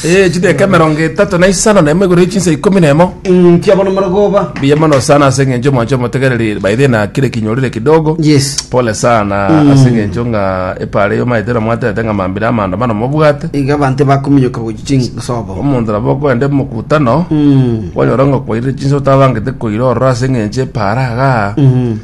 Eh, chideka emerongo etato na isano na emo igoro ya chinsa ikomi na emo nkiabona marogoba mbuya mono sana ase eng'encho mwancho omotegereri by the na kire kinyorire kidogo yes pole sana ase eng'encho ng'a epara eyo maete na mwaterete ng'a mambire amaandamano mobwate iga abanto bakominyoka gochi chinsobo omonto nabo okoende mokutano Mm. kwanyora ng'a kwaire chinsa otabangete koira ororo ase eng'encho epara igaa Mm.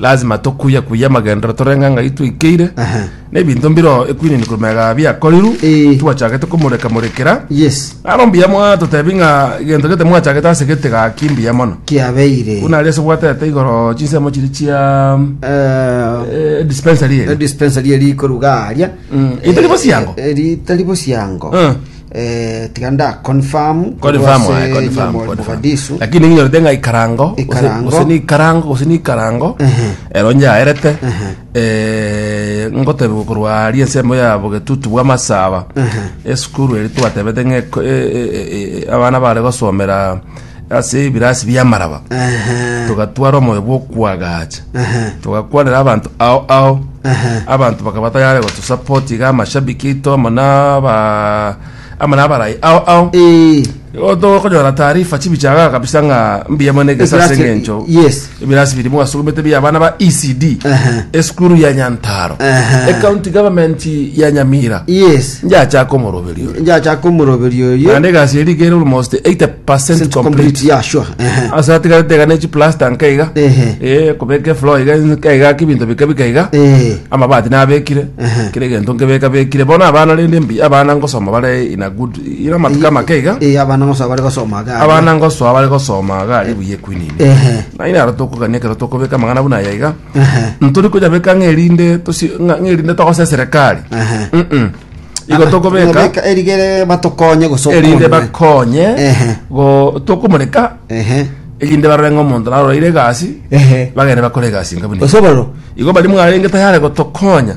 Lazima tokuye kuye amagendero torenga ng'ai twaikeire Aha. n'ebinto mbiro ekwinini komega biakorirwe Eh. twachagete komoreka morekera Yes. naro mbuya mono totebi ng'a egento gete mwachagete ase gete gaki mbuya mono Kiabeire. buna ari ase gwatete igoro chinsemo chiri chia Eh, eh, dispensary eri dispensary eri koruga aria. Mm. Itari bosiango? Eh, eh, ritari bosiango. Eh. Eh, tiga nda confirm korwa Confirm, ase aye, confirm, Nyamori confirm. Mogadisu. lakini ninyorete ng'a ikarango gose- Ikarango. gose ni ikarango gose ni ikarango ero nyaerete eh, ngotebiwa korwa aria ensemo ya bogetutu bwa masaba esukuru eri twatebete ng'a eko- e- e- e- e- abana bare gosomera ase ebirasi bi'amaraba, togatwara omoyo bw'okwagacha, togakwanera abanto ao ao, abanto bakaba tayare gotusupport iga amashabiki aito amo naba amo nabarai ao ao Ee, Igo tokonyora taarifa chibichagaga kabisa ng'a mbuya mono egesa ase Ekirasi- eng'encho yes. Ebirasi biri bwasogomete bia abana ba ECD Ehe. esukuru ya Nyantaro Ehe. ecounty government ya Nyamira yes njachaka omoroberio oyo. njachaka omoroberio oyo naende egasi eri kere almost 80 percent complete complete yeah sure ehe ase atigarete iga nechi plaster nka iga Ehe. Eh, kobeka efloor iga nka iga ake ebinto bika bika iga Eh. amabati nabekire Ehe. kera egento nkebeka bekire bono abana rende mbi abana ngosoma bare in a good Ira amatuko amake iga Eh, abana ng'osa bare gosoma iga. abana ngosoa bare gosoma iga ari buya ekwinini Ehe. naye naro tokogania ekero tokobeka amang'ana buna aya iga Ehe. ntori konyabeka ng'erinde tosi- ng'a- ng'erinde togose eserekari Ehe. Mm-mm. igo tokobeka Nyabeka erigere batokonye gose erinde okonwe. bakonye Ehe. go- tokomoreka Ehe. erinde barore ng'a omonto naroreire egasi Ehe. bagende bakore egasi nga buna eye. Osoboro. igo bari mwarenge tayare gotokonya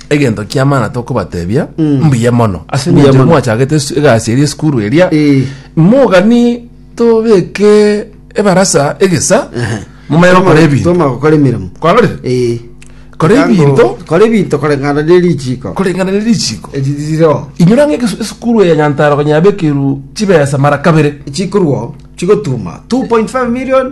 egento kiamana tokobatebia mbuya mono ase Mbuya eng'encho mono. mwachagete esu- egasi eria esukuru eria Eh. mogani tobeke ebarasa egesa mumanye gokora ebinto Toma gokora emirimo kwarorire Eh. kora Tango- ebinto kora ebinto koreng'ana ne richiko koreng'ana ne richiko eririro inyora ng'e egesu- esukuru ya nyantaro konyabekerwa chibesa mara kabere chikorwo chigotuma 2.5 million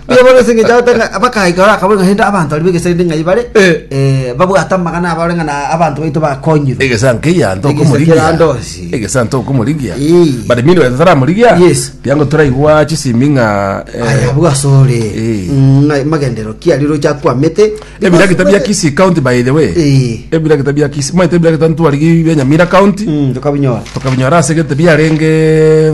Nigo bono ase engencho agoteba ng'a bakaika ore akabore ng'a hende abanto aria b'egesainde ng'ai bare Eh. eh, babwate amagana abo ore ng'a na abanto baito bakonyirwe egesa nkeya nto Egesa okomorigia kera ndosi. egesa nto okomorigia Ii. but mini wete taramorigia Yes. tiango toraigwa chisimi ng'a eh, aya abwo asore Eh. ng'a magendero ki aria roche akwamete ebirakita bia Kisii county by the way Eh. ebirakita bia Kisii maete ebirakita ntwarigi bia Nyamira county Mm, tokabinyora tokabinyora ase gete biarenge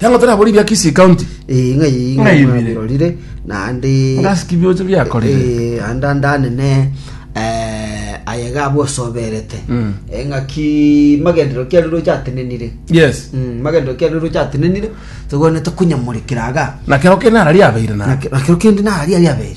Yango tara bori bia Kisii County. Eh, ng'ai Ng'ai ng'ai bire. mwabirorire naende Ngasiki biocho biakorire. Eh, anda ndanene eh, aye gabo osoberete Mm. Eh, ng'aki magendero kia rero chatenenire Yes. Mm, magendero kia rero chatenenire togwenete kunyamorekera aga Na kero kene arari abeire na. nakero kende nari ari abere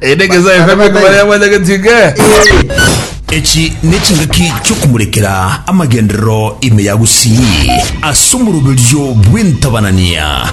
Ere Nyasae Oyobe nigo baria banyagetiga. Echi nechingaki chiokomorekera amagenderero ime ya gusii, as'omoroberio bw'entabanania.